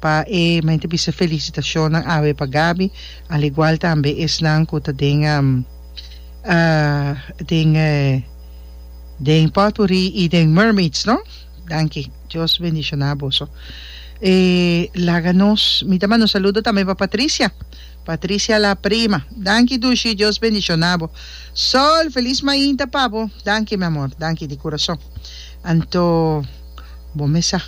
Pa e mente bisa felicitacionnan awe pa Gaby al igual tambe esnan cu ta den den den potpourri y den mermaids no danki Dios bendiciona boso e laga nos mi ta manda un saludo tambe pa Patricia Patricia la prima danki dushi Dios bendiciona bo Sol feliz mainta pa bo danki mi amor danki di curason anto bo mesa.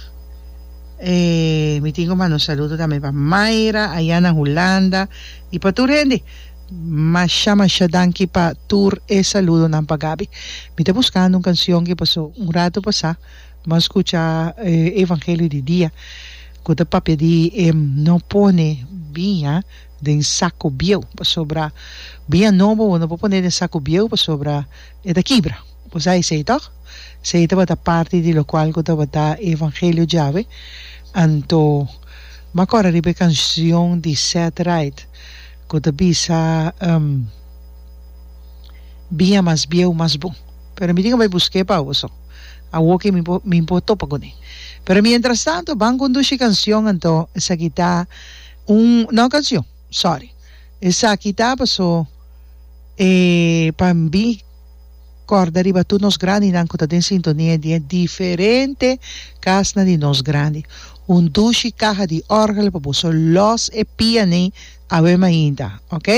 E mi tin cu manda un saludo tambe pa Mayra aya na Hulanda y pa tur hende. Masha masha danki pa tur e saludonan pa Gaby. Mi ta buscando un cancion que paso un rato pasa mas scucha Evangelio di dia cu ta papia di e no pone biña den saco bieu pasobra biña nobo bo no por pone den saco bieu pasobra e ta kibra. Bo sa esei tòg? Sei tabata parti di lokual ku tabata e evangelio djawe. Anto m'a kòrda riba e kanshon di Seth Wright ku ta bisa, Bia mas bieu, mas bon. Pero mi tin ku bai busk'é pa oso. Awo ke mi por mi por topa kuné. Pero miéntras tanto ban kondushi kanshon anto esaki ta un, no kanshon, sorry. Esaki ta paso e pa mi. Kòrda riba tur nos grandinan ku ta den sintonia di e diferente kasnan di nos grandi. Un dushi kaha di òrgel pa bo so lòs e pianí awe mainta, ok?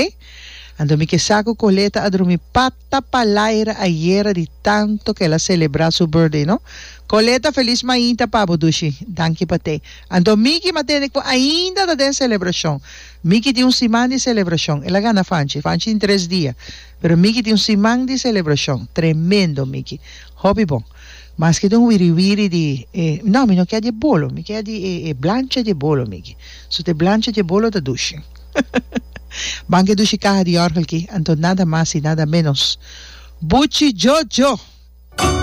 Anto mi ke sa ku Coleta a drumi pata palaira ayera di tanto ku el a selebrá su birthday, no? Coleta, felis mainta pa bo, dushi. Danki pa te. Anto Miki m'a tende ku ainda ta den selebrashon. Miki tin un siman di selebrashon. El a gana fanchi. Fanchi tin tres dia. Pero Mickey tin un siman di celebracion. Tremendo Mickey. Hopi bon. Maske tin un wiri wiri di e, no mi no kier di e bolo, mi kier di e e blancha di e bolo Mickey. Su te blancha di e bolo ta dushi. Ban ke dushi caha di yorgel ki, anto nada mas y nada menos. Buchi Jojo!